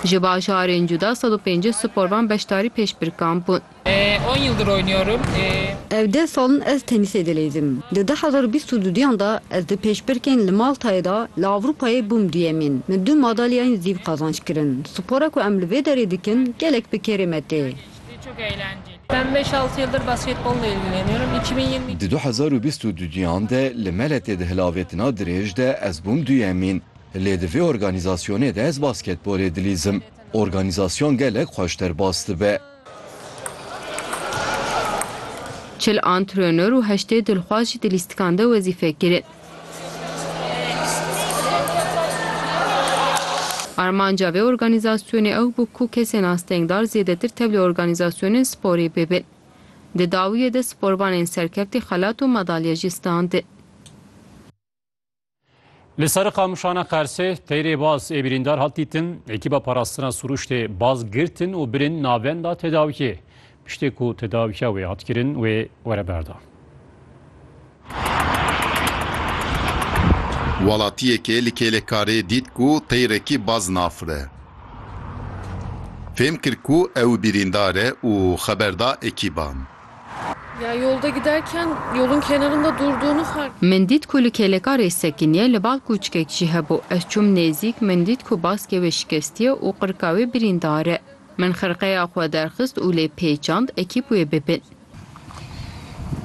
Ji bajarên cuda sed û pêncî sporvan beşdarî pêşbirkan bûn. On yıldır oynuyorum. Ev deh sal in ez tenîsê dileydim. Di du hezar û bîst û du diyan de ez di pêşbirkên li Maltayê de li Ewropayê bûm duyemîn. Min du madalyayên zîv qazanç kirin. Spora ku em li vê derê dikin gelek bi kêrê me tê. Ben beş altı yıldır basketbolla ilgileniyorum. İki bin yirmi iki. Di du hezar û bîst û du diyan de li Meletê di hilavêtina dirêj de ez bûm duyemîn. Lê di vê organîzasyonê de ez basketbolê dilîzim. Organîzasyon gelek xweş derbas dibe. Çil antrenor û heştê dilxwaz jî di lîstikan de wezîfe kirin. Armanca vê organîzasyonê ew bû ku kesên astengdar zêdetir tevlî organîzasyonên sporê bibin. Di dawiyê de sporvanên serkeftî xelat û madalye jî standin. Li ser qamişana Qersê teyrê baz ê birîndar hat dîtin, ekîba parastina suruştê baz girtin û birin navenda tedawiyê. Piştê ku tedawiya wê hat kirin wê were berdan. Welatiyekê li kêlekarê dît ku teyrekî baz nafire. Fêm kir ku ew birîndar e û xeber da ekîban. Min dît ku li kêlekarê sekiniye, li bal kûçikek jî hebû. Ez çûm nêzîk, min dît ku baskê wê şikestiye û qirika wê birîndar e. Min xirqeya xwe derxist û lê pêçand ekîb wê bibin.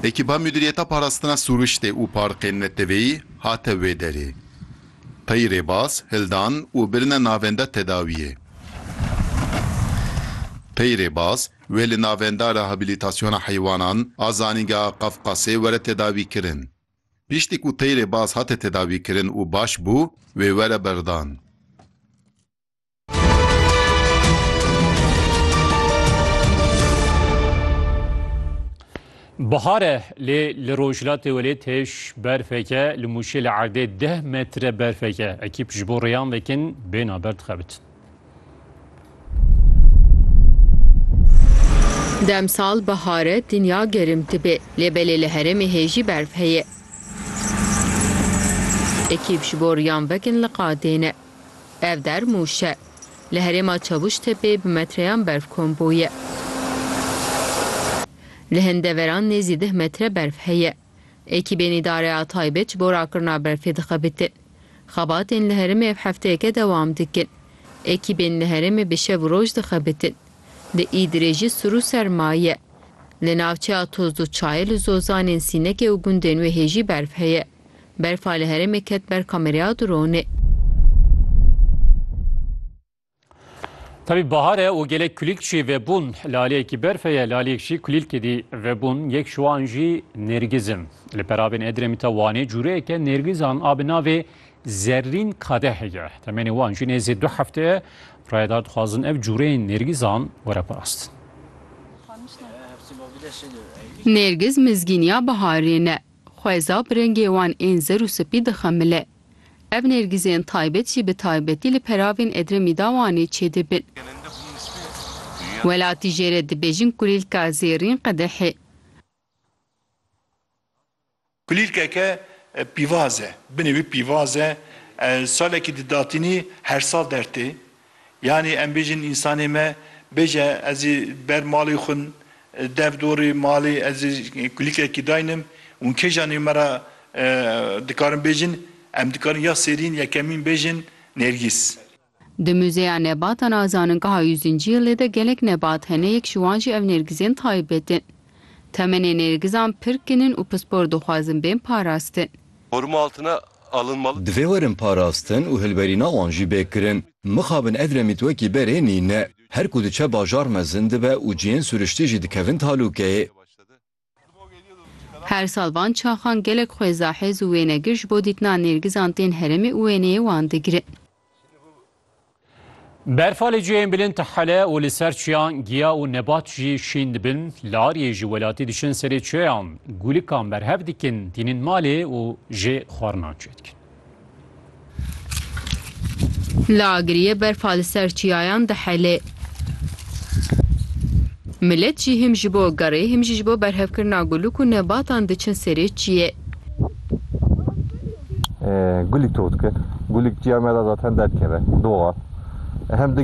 Ekîba Mudîriyeta Parastina Sûriştê û Parkên Neteweyî hate wê derê. Tayî rêbaz, hildan û birine navenda tedawiyê. Tayî rêbaz, Wê li Navenda Rehabilitasyona Heywanan a Zanîngeha Qafqasê were tedawîkirin. Piştî ku teyrê baz hate tedawîkirin û baş bû, wê were berdan. Bihar e lê li rojhilatê welêt hêj berfek e, li Mûşê li erdê deh metre berfek e. Ekîp ji bo rêyan vekin bêhna ber dixebitin. Demsal bihar e dinya gerim dibe lê belê li herêmê hê jî berf heye. Ekîb ji bo riyan vekin li qadêne. Ev der mûş e. Li herêma Çavuştepê bi metreyan berf kom bûye. Li hin deveran nêzî deh metre berf heye. Ekîbên Îdare a Taybet ji bo rakirina berfê dixebitin. Xebatên li herêmê ev hefteyeke dewam dikin. Ekîbên li herêmê bi şev û roj dixebitin. Di Îdirê jî sir û serma ye. Li navçeya Tozluçayê li zozanên Sînekê û gundên wê hê jî berf heye. Berfa li herêmê ket ber kameraya dronê. Tabii bahare û gelek kulîlk jî vebûn li aliyekî berfê ye, li aliyek jî kulîlkê dî vebûn. Yek ji wan jî nêrgiz in. Li perabên Edremitê Wanê cûreyeke nêrgizan a bi navê zerrîn kadeh heye. Temenê wan jî nêzî du hefte ye. Rayedar dixwazin ev cûreyên nêrgizan were parastin. Nêrgiz mizgîniya biharê ne. Xweza bi rengê wan ên zer û spî dixemile. Ev nêrgîzên taybet jî bi taybetî li peravên Edremî da Wanê çêdibin. Welatî jê re dibêjin kulîlka zêrîn qedehê. Kulîlkeke pîvaz e. Binê wî pîvaz e. Salekî di datinî her sal dertê. Yanî em bêjin însanê me bêje ez ê ber malê xwe dev dorê malê ez ê kulîkekî daynim û kêjan ê me ra dikarin bêjin em dikarin ya sêrîn ya kemîn bêjin Nêrgîs. Di Muzeya Nebatan a Zaningeha Yûzincî lê de gelek nebat hene yek ji wan jî ev nêrgizên taybet in. Temenê nêrgizan pir kin in û pispor dixwazin bên parastin. Xurma altine Divê werin parastin û hilberîna wan jî bê kirin. Mixabin ev remît wekî berê nîne. Her ku diçe bajar mezin dibe û cihên suriştî jî dikevin talûkeyê. Her sal van çaxan gelek xwêza hêz û wênegir ji bo dîtina nêrgizan tên herêmê û wêneyê wan digirin. Berfa li cihên bilind hele û li ser çiyan giya û nebat jî şîn dibin. Li Aryê ji welatî diçin serê çiyan, gûlikan berhev dikin, tînin malê û jê xwarinan çê dikin. Li Agiriyê berfa li ser çiyayan dihele. Milet jî him ji bo gerê him jî ji bo berhevkirina gûlik û nebatan diçin serê çiyê. Gulîk tot kir. Gulîk çiya me re zaten derkeve, doxa. Hem digere.